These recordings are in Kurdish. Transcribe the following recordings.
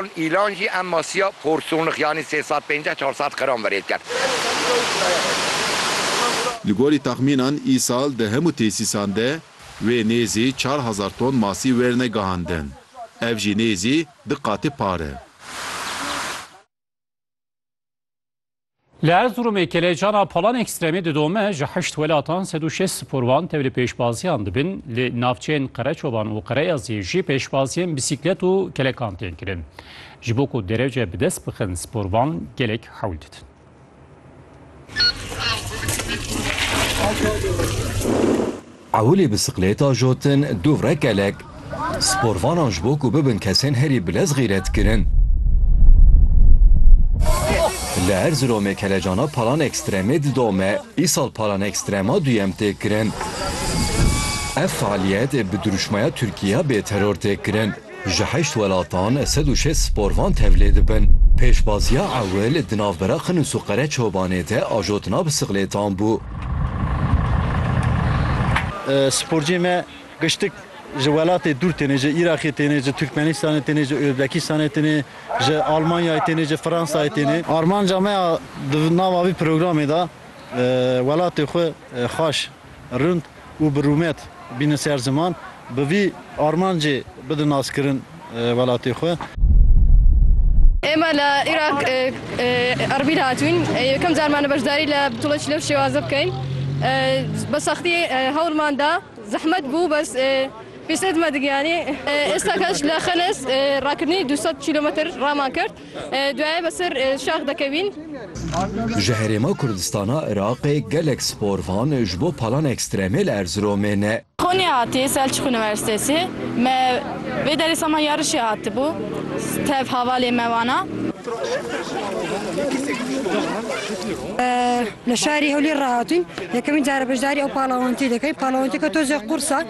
Îlan jî em masiya porsonix yanî sê sed pênceh çar sed qram verê dikir. Li gorî texmînan îsal di hemû tesîsan de wê nêzî çar hezar ton masî wêrine gihandin. Ev jî nêzî di qatê pare. Li Erzurumê kêlejana palan ekstremê didome ji heşt welatan sed û şêst sporvan tevlî pêşbaziyan dibin. Li navçeyên Qereçoban û Qereyaziyê jî pêşbaziyên bîsîklet û kelekan tên kirin. Ji bo ku derece bi dest bixin sporvan gelek hewl didin. Ewilî bisiklêta jotin dû re gelek sporvanan ji bo ku bibin kesên herî bilez xîret kirin. Li Erziromê kelecana palan ekstremê didome, îsal palan ekstrema duyem tê kirin. Ev fealiyet bi dirûşmaya Tirkiye bê teror tê kirin. Ji heşt welatan sed û şêst sporvan tevlê dibin. Pêşbaziya ewil di navbera Qinus û Qereçobanê de ajotina bisiklêtan bû. Sporciyên me giştik ji welatê dûr têne, ji Îraqê têne, ji Tirkmenistanê têne, ji Ozbekistanê têne, ji Almanyayê têne, ji Fransayê têne. Armanca me ya di nava vî programê de welatê xwe xweş rind û bi rûmet bînin ser ziman, bi vî armancê bidin naskirin welatê xwe. Êma li Îraq Erbîl hatûn, yekem car mane beşdarî li Btûla Çî lew şêwaze bikein. Bi sextî hewl man da, zehmet bû bes pêşê dime digiyanî. Êsta keç li Xenes rakirinî du sed kîlometr raman kir. Duaye be sir şax dekevîn. Ji herêma Kurdistana Iraqê gelek spor van ji bo palan ekstremê li Erziromê ne. Konyê hatî, Selçuk Universitesi, me vê derê sema yarişê hatibû, tev havalê me wana. Li şarê Hewlêr re hatîn, yekemîn care beşdarî ew palavantiyê dikin, palavantiyeke tozê qurs e.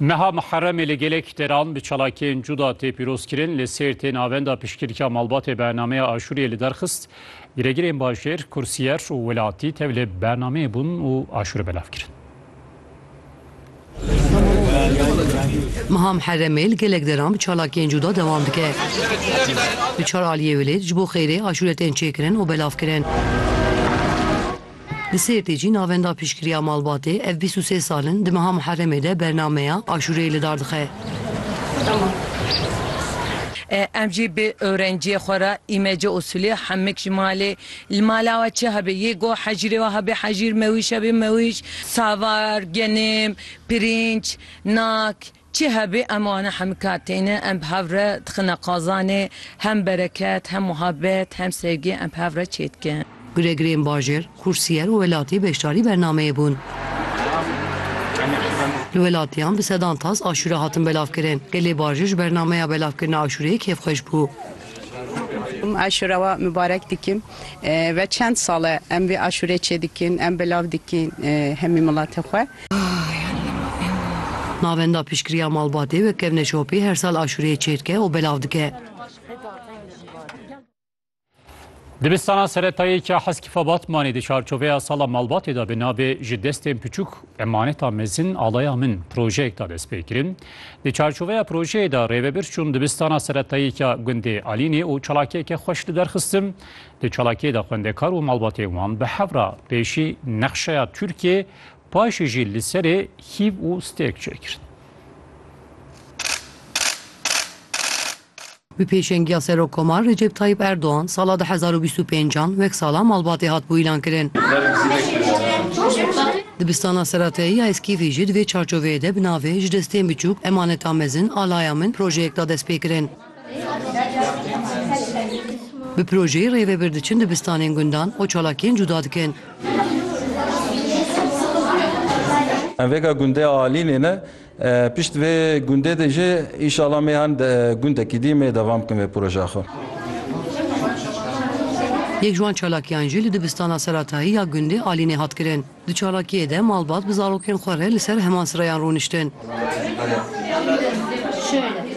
Meha Muherremê li gelek deran bi çalakiyên cuda tê pîrozkirin. Li Sêrtê navenda piştgirîka malbatê bernameya aşûriyê li derxist. Giregirên bajêr, kursiyer û welatî tevlê bernameyê bûn û aşûrê belav kirin. Meha Muherremê li gelek deran bi çalakiyên cuda dewam dike. Li çar aliyê wêlêt ji bo xêrê aşûre tên çêkirin û belavkirin. Li Sêrtê jî navenda piştgiriya malbatê ev bîst û sê sal in di meha Muheremê de bernameya aşûreyê li dar dixe. Em jî bi ewrenciyê xwe re îmece usûlê hemik ji malê li mala we çi hebe yê got hecîrê we hebe hecîr mewîş hebe mewîş savar, genim, pirînç, nak, Çi hebe em ane hemika têne, em bi hev re dixine qazanê, hem bereket, hem muhabbet, hem sevgi em bi hev re çêdikin. Guregrên bajêr, xûrsîyer û welatî beşdarî bernameyê bûn. Li welatiyan bi sedan tas aşûre hatin belavkirin. Gelê bajêr ji bernameya belavkirina aşûreyê kêfxweş bû. Aşûra we mibarek dikim ve çend sal e em vê aşûrê çêdikin, em belav dikin hemî milatê xwe. Navenda piştgiriya malbatê wek kevne şopê her sal aşureyê çêdike û belav dike. Dibistana seretayê ke Heskîfa Batmanê di çarçoveya sala malbatê de bi navê Ji destên piçûk emaneta mezin alaya min projeyek da dest pê kirin. Di çarçoveya projeyê de rêvebir çûn dibistana seretayê ke gundê Alînê û çalakiyeke xweş li der xistin. Di çalakiyê de xwendekar û malbatên wan bi hev re pêşî nexşeya Tirkiyê Paşê jî li serê hîv û stêrk çêkir. Bi pêşengiya Serokkomar Recep Tayyip Erdogan sala du hezar û bîst û pênc an wek sala malbatê hat bû îlankirin. Dibistana Serateyî ya Eskîfî jî di vê çarçoveyê de bi navê Ji destên biçûk, emanetan mezin, alaya min projeyek da destpêkirin. Bi projeyê rêvebir diçin dibistanên gundan û çalakiyên cuda dikin. Em vêga gundê Alînê ne. Pişt vê gundê de jî înşala mêhan gundekî dî mê devam bikin vê projeya xwe. Yek ji wan çalakiyan jî li dibistana seratayî ya gundê Alînê hat kirin. Di çalakiyê de malbat bi zarokên xwe re li ser heman sirayan rûniştin.